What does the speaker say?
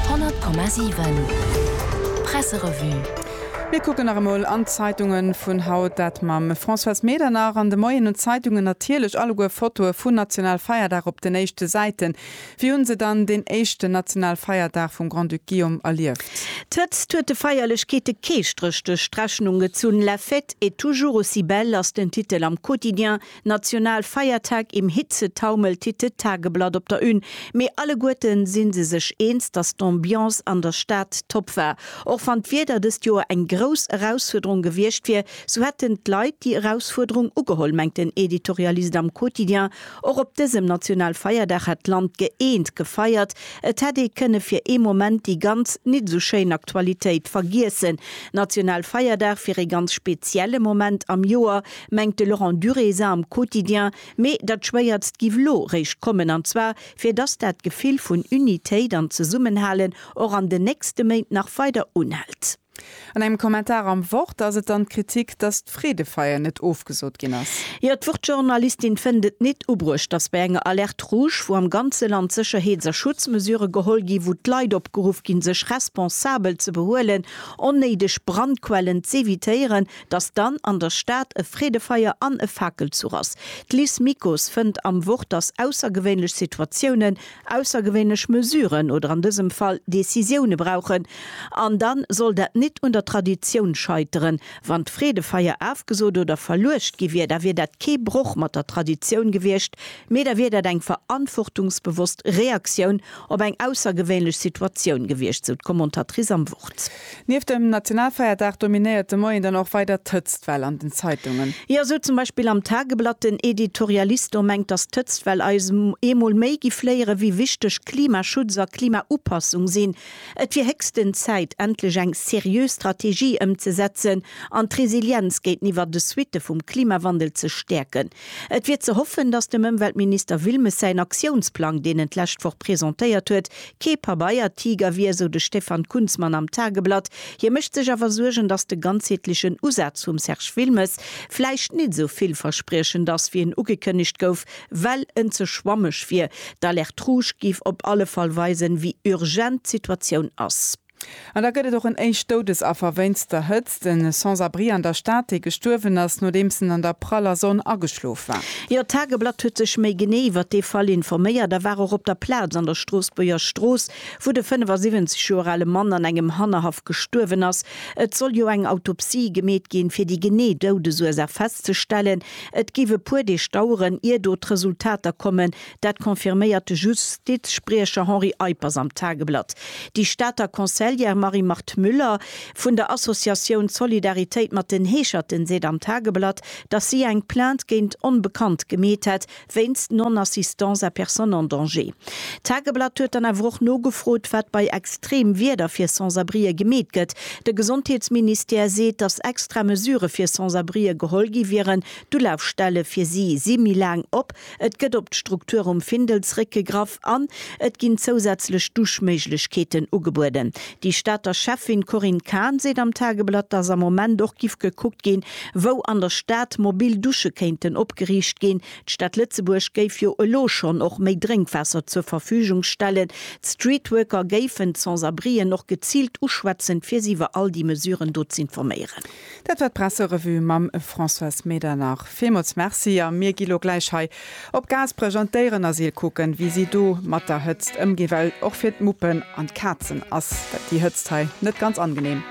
100,7 Presserevue Mir kucken nach emol an d'Zeitunge vun haut, dat mam Françoise Medernach. An de Moien hunn d'Zeitungen natierlech alleguer Fotoe vun Nationalfeierdag op den éischte Säiten. Wéi hunn se dann deen éischten Nationalfeierdag vum Grand-Duc Guillaume erlieft? D'Hëtzt huet de Feierlechkeete kee Stréch duerch d'Rechnung gezunn. La fête est toujours aussi belle ass den Titel am Quotidien National Feiertag im Hitzetaumel titt de Tageblatt op der Une. Mee alleguerten sinn se sech eens, dass d'Ambiance an der Stad top war. Och wann d'Wieder dëst Joer eng grouss Erausfuerderung gewiescht wier, sou hätten d'Leit déi Erausfuerderung ugeholl, mengt den Editorialist am Quotidien. Och op dësem National Feierdag hätt d'Land gëeent gefeiert. Et hätt ee kënne fir ee Moment déi ganz nit esou schéin Aktualitéit vergiessen. National Feierdag wier ee ganz spezielle Moment am Joer. mengt de Laurent Durésa am Quotidien, mee datt Schwéiertst giff lo réischt kommen, an zwar fir datt dat Gefill vun Unitéit an Zesummenhalen och an den nächste Méint nach weider unhält. An engem Kommentar am Wort ass et dann d'Kritik, datt d'Freedefeier net ofgesot ginn ass. Jo, d'Wort-Journalistin fënnt et nit ubruecht, datt bei enger Alerte rouge, wou am ganze Land Sécherheets a Schutzmesure geholl ginn, wou d'Leit opgeruff ginn, sech responsabel ze behuelen, onnéideg Brandquellen z'evitéieren, Datt dann an der Stad e Freedefeier an e Fakelzuch ass. D'Liz Mikus fënnt am Wort, datt aussergewéinlech Situatiounen aussergewéinlech Mesuren oder an dësem Fall Decisioune brauchen. An da soll dat nit un der Traditioun scheiteren. Wann d'Freedefeier afgesot oder verluecht gi wier, da wier dat kee Broch mat der Traditioun gewiescht, mee da wier dat eng verantwortungsbewosst Reaktioun op eng aussergewéinlech Situatioun gewiescht, sou d'Commentatrice am Wort. Nieft dem Nationalfeierdag dominéiert de Moien dann och weider d'Hëtztwell an den Zeitungen. Jo, esou zum Beispill am Tageblatt. Den Editorialisto mengt, datt d'Hëtztwell eis eemol méi giff léieren, wéi wichteg Klimaschutz a Klimaupassung sinn. Et wier héchsten Zäit, endlech eng seriö Strategie ëmzesetzen an d'Resilienz géinteniwwer de Suitte vum Klimawandel ze stäerken. Et wier ze hoffen, datt dem Ëmweltminister Wilmes säin Aktiounsplang, deen en d'lescht Woch presentéiert huet, Kee Pabeiertiger wier, esou de Stefan Kunzmann am Tageblatt. Hie mécht sech awer Suergen, datt de ganzheetlechen Usaz vum Serge Wilmes vläicht net esou villverspriechend ass, wéi en ugekënnegt gouf, well en ze schwammeg wier. D'Alerte rouge géif op alle Fall weisen, wéi urgent d'Situatioun ass. An da gëtt et och en éischt Doudesaffer wéinst der Hëtzt, e Sans-abri an der Stad, dee gestuerwen ass, nodeems en an der praller Sonn ageschlof war. Jo, d'Tageblatt huet sech méi genee iwwer dee Fall informéiert a war och op der Plaz an der Stroossbuerger Strooss, wou de 75 Joer ale Mann an engem Hannerhaff gestuerwen ass. Et soll jo eng Autopsie gemeet ginn, fir déi genee Doudesursaach festzestellen. Et géif e puer Deeg daueren, ier do d'Resultater kommen, Dat confirméiert de Justizspriecher Henri Eippers am Tageblatt. Déi Stater Conseillère Marie-Marthe Müller vun der Associatioun Solidaritéit mat den Heescherten seet am Tageblatt, datt si eng Plainte géint Onbekannt gemeet hätt, wéinst Non-assistance à personne en danger. D'Tageblatt huet dann awer och nogefrot, wat bei extreem Wieder fir Sans-abrieë gemeet gëtt. De Gesondheetsministère seet, datt extra Mesure fir Sans-abrieë geholl gi wieren. D'Ulafstelle fir si si méi laang op. Et gëtt op d'Struktur um Findelsréck gegraff an et ginn zousätzlech Duschméiglechkeeten ugebueden. Déi Stater Schäffin Corinne Cahen seet am Tageblatt, datt am Moment och giff gekuckt ginn, wou an der Stad mobil Dusche kéinten opgeriicht ginn. D'Stad Lëtzebuerg géif jo elo schonn och méi Drénkwaasser zur Verfügung stellen. D'Streetworker géifen d'Sans-abrien och geziilt uschwätzen, fir si iwwer all déi Mesuren do z'informéieren. Dat war d'Presserevue mam Françoise Medernach. Villmools Merci a mir gi lo gläich hei op Gaasperech an d'Déierenasyl kucken, wéi si do mat der Hëtzt ëmginn, well och fir d'Muppen an d'Kazen ass déi Hëtzt hei net ganz angenehm.